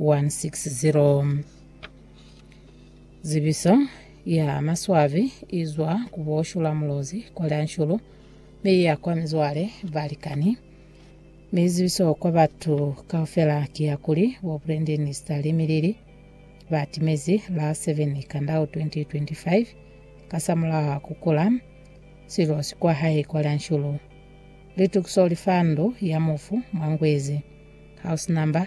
160. Zibiso ya maswabi i zwa ku bo Shula Mulozi kwa Lyanshulu mi i ya kwa mizwale, balikani, mi zibiso kwa batu kaufela ki ya kuli bo Brendeni Sitali Milili ba timezi la 7 Kandau 2025 kasamulaho ku kula silosi kwa hae kwa Lyanshulu. Litukiso li fa ndu ya mufu mwa Ngwezi, house number,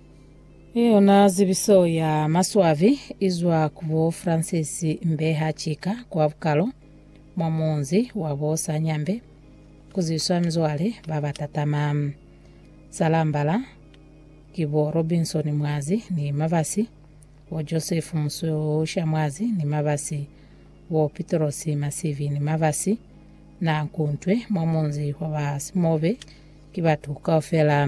I yona zibiso ya maswabi i zwa ku bo Francis Mbeha Chika kwa Bukalo, mwa munzi wa bo Sanyambe, ku zwiswa mizwale ba ba tatama. Salambala ki bo Robinson Mwazi ni Mabasi, bo Joseph Mususha Mwazi ni Mabasi, bo Pitross Masivi ni Mabasi, Nankuntwe mwa munzi wa ba Simobe ki batu kaufela.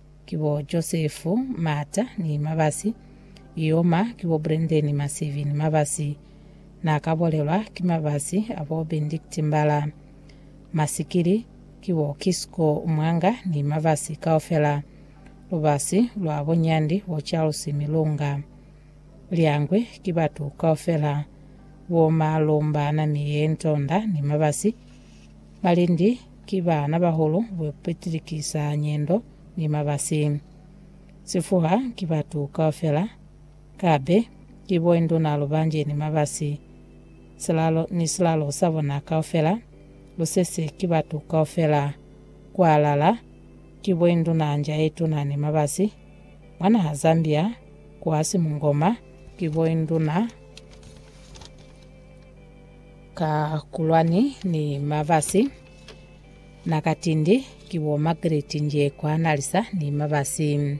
Ki bo Josefu Mata ni Mabasi, Ioma, ki bo Brendeni Masivi ni Mabasi. Na ka bolelwa ki Mabasi a bo Bendikti Mbala. Masikili, ki bo Kisko Mwanga ni Mabasi kaufela. Lubasi lwa bo Nyandi bo Charles Milunga. Lyangwi ki batu kaufela. Bo Malumba Namie Ntonda ni Mabasi. Balindi ki baana bahulu bapitilikisa nyendo ni mabasi. Sifuha ki batu kaufela, kabe ki boinduna lubanje ni mabasi. Silalo ni silalo sa bona kaufela, lusese ki batu kaufela. Kualala ki boinduna nja ye tuna ni mabasi. Mwa naha Zambia, kuasi mungoma ki boinduna. Ka kulwani ni mabasi na ka tindi ki bo Margaret Njekwa Nalisa ni mabasi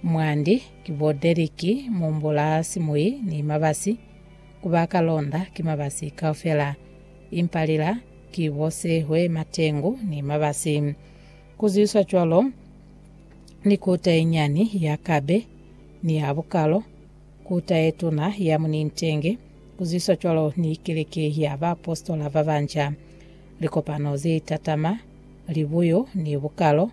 mwandi ki bo Derrick Mumbula Simuyi ni mabasi kuba ka londa ki mabasi kaufela impa lila ki bo Sehwe Matengu ni mabasi ku zwiswa cwalo ni kota ye nyani ya Kabe ni ya Bukalo Kuta yetuna ya munintenge kuzwiswa cwalo ni keleke ya baapositola babanca, likopano zetatama, libuyo ni bukalo,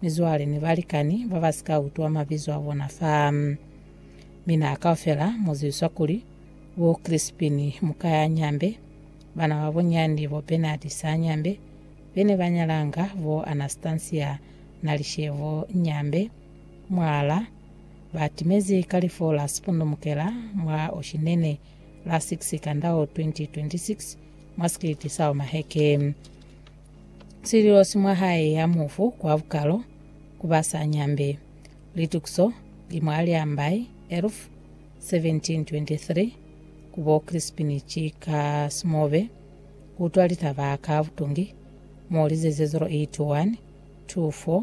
mizwale ni balikani babasika utwa mabizo abona fa. Mi na kaufela muzwiswa kuli, bo Crispin muka ya Nyambe, bana babunyani bo Bernard sa Nyambe, bene banyalanga bo Anastasia na Lishevo Nyambe, mwala, Ba timezi kalifo la sipundumukela mwa Oshinene la 6 Kandao 2026 mwa sikiliti sa Omaheke. Sililo si mwa hae ya mufu kwa bukalo ku ba sa nyambe. Litukiso li mwa Liambai, Elf. 1723 ku bo Crispin Chika Simobe ku utwa litaba ka butungi mo lize ze 0812 4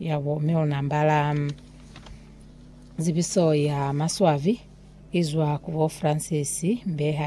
Yabo, mi una ambala zibiso ya maswabi izwa ku bo Francis Mbeha.